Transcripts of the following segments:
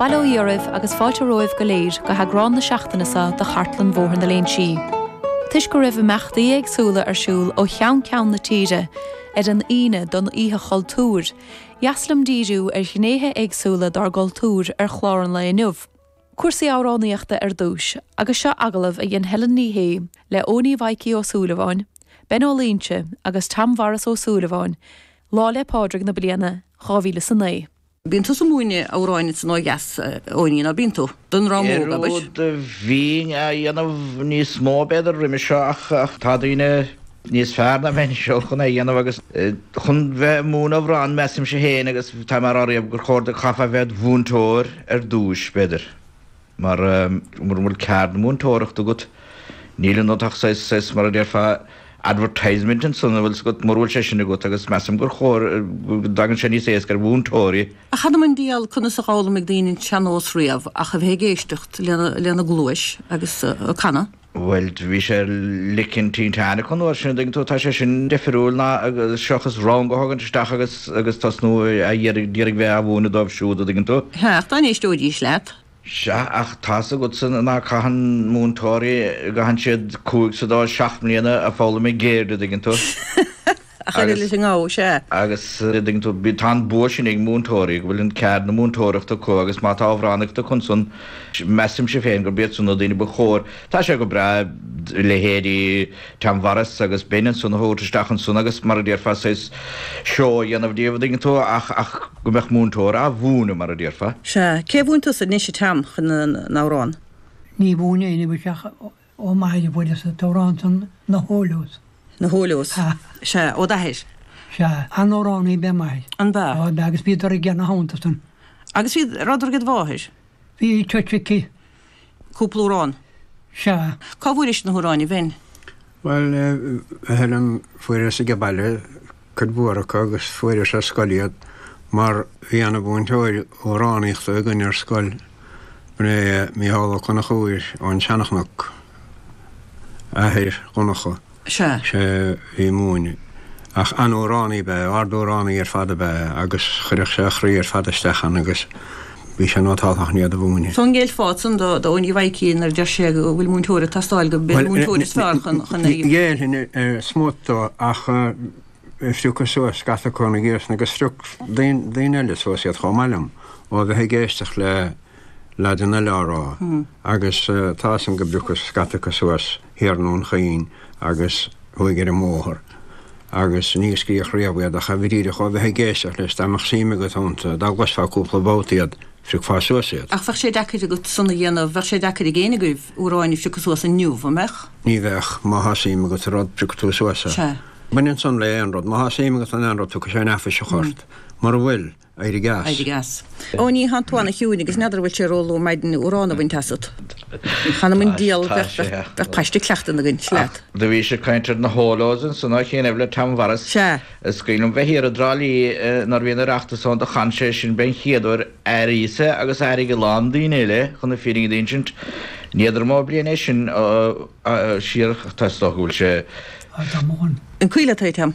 Bail ó Dhia oraibh agus fáilte romhaibh go léir go heagrán na seachtaine seo de Chartlann Bhóthar na Léinsí. Toisc go raibh imeachtaí éagsúla ar siúl ó cheann ceann na tíre ar an Aoine don Oíche Chultúir, dheas liom díriú ar ghnéithe éagsúla dár gcultúr ar chlár an lae inniu. Cúrsaí amhránaíochta ar dtús, agus seo agallamh a dhein Helen Ní Shé le Eoiní Mhaidhcí Ó Súilleabháin, Ben Ó Loingsigh agus Tom Mharas Ó Súilleabháin, Lá 'le Pádraig na bliana dhá mhíle 'sa naoi. Bíonn tusa 'múineadh amhráin ins an oidh dheas Eoiní, ná bíonn tú? don dream óg, abair. Do bhínn á dhéanamh níos mó b'fhéidir roimis seo ach tá daoine níos fearr ná mé anseo chun é dhéanamh agus chun bheith a' múineadh amhrán measaimse féin agus tá mé a' rá riamh gur chóir go gcaithfeá bheith id mhúinteoir ar dtúis b'fhéidir. mar mura bhfuil ceard na múinteoireachta agat níl ionat ach saghas, saghas mar a déarfá advertisement ansan a bhfuil 's agat, mura bhfuil sé sin agat agus measaim gur chóir go dtagann sé níos éasca ar mhúinteoirí. Ach th'anam 'on diabhal conas a dh'fhoghlaimigh daoine an tsean-nós riamh ach a bheith ag éisteacht lena, lena gcluais agus a' canadh. Bhuel, bhí sé lic an tinteáin acu an uair sin, tuigeann tú, tá sé sin deifriúil ná seachas rang a thagann isteach agus tosnú a d'iarraidh bheith á mhúineadh dóibh siúd, a dtuigeann tú. Sea, ach dá n-éisteoidís leat. Sea, ach tá's agatsa ná caitheann múinteoirí, caitheann siad cúig, sé nó seacht mbliana a foghlaim a gcéird, a dtuigeann tú. a chuireadh leis an ngabha, sea. Agus tá an bua sin ag múinteoirí, go bhfuil an ceard na múinteoireachta acu agus má tá amhránaíocht acu ansan, measaimse féin gurb iadsan na daoine ba chóir. Tá sé go breá leithéidí Tom Mharas agus Ben ansan a thabhairt isteach ansan agus mar a déarfá saghas seó a dhéanamh díobh, a' dtuigeann tú, ach, ach go mbeadh múinteoir a' mhúineadh mar a déarfá. Sea. Cé a mhúin tusa anois a Tom, an amhrán? Ní mhúineadh éinne uilig ach. Ó m'athair a bhailíos an t-amhrán san Na hUallaghs. Na hUallaghs. Sea. Sea. Ó d'athair. Sea. An-amhránaí ab ea m'athair. An b'ea? Ó ab ea agus bhíodar ag déanamh thonnta san. Agus bhíodar aged mháthair? Bhí teach aici. Cúpla amhrán? Sea. Cá bhfuairis na hamhráin a Bhen? Bhuel, eh, ar an, fuaireas age baile. cuid mhór acu agus fuaireas ar scoil iad mar bhí ana mhúinteoir amhránaíochta againn ar scoil, b'in é Micheál Ó Conchubhair ón tSeanachnoc, athair Dhonncha. Sea. Sé a bhí ag múineadh. Ach an-amhránaí ab ea é, ard-amhránaí ar fad ab ea é agus chuirfeadh sé a chroí ar fad isteach ann agus Bhí sé an-ábalta chun iad a mhúineadh. An ngéillfeá ansan do Eoiní Mhaidhcí nuair a deir sé go bhfuil múinteoir ag teastáil gurb é an múinteoir is fearr chun chun í. Ghéillfinn ar smut dó ach phriocas suas scata acu ar na gcíosanna agus phrioc daoine eile suas iad chomh maith liom ó bheith ag éisteacht le leaideanna eile á rá agus tá san go bpriocfadh scata acu suas. Thiar i nDún Chaoin agus thuaidh ar an mbóthar, agus níor scríobh riamh iad, ach a bheith díreach ó bheith ag éisteacht leis, dá mbeadh suim agat iontu, dá gcloisfeá cúpla babhta iad, phriocfá suas iad. Ach bheadh sé deacair agat san a dhéanamh, bheadh sé deacair ag éinne agaibh, uair amháin, a phriocadh suas inniu, an mbeadh? Ní bheadh, má thá suim agat i rud, priocfaidh tú suas é. Sea. Baineann san le aon rud, má thá suim agat in aon rud, tiocfaidh sé an-fhuiriste ort. Mura bhfuil. Éirigh as. Ó, tá tú an-chiúin agus n'fheadar an bhfuil sé ró-luath ar maidin amhrán a bhaint asat. Th'anam on dial, bheadh píosa cleachtan againn, sleat. Do bhís ag caint ar an eolas ins an áit chéanna le Tom Mhuiris. Sea. Is cuimhin liom bheith thiar i dTrá Lí nuair bhí an Oireachtas ann, do chan sé sin b'in é an chéad uair airíosa agus d'airigh a lán daoine eile chun na fírinne d'insint. Ní fheadar an mó bliain é sin siar, ach tá is dócha go bhfuil sé. An cuimhin leat é, Tom?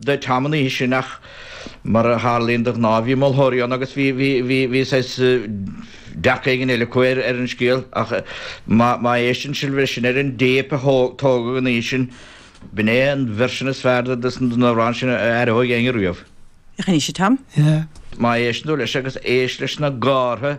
de Tom an oíche sin ach mar a tharlaíonn de ghnáth bhí moltóirí ann agus bhí, bhí, bhí, bhí saghas dearcadh éigin eile acu ar, ar an scéal ach má, má éisteann sibh leis sin ar an dtéip a tógadh an oíche sin b'in é an version is fearr de, de, den amhrán sin a aireoidh éinne riamh. Rinne sé, Tom. Yeah. Má éisteann tú leis agus éist leis na gártha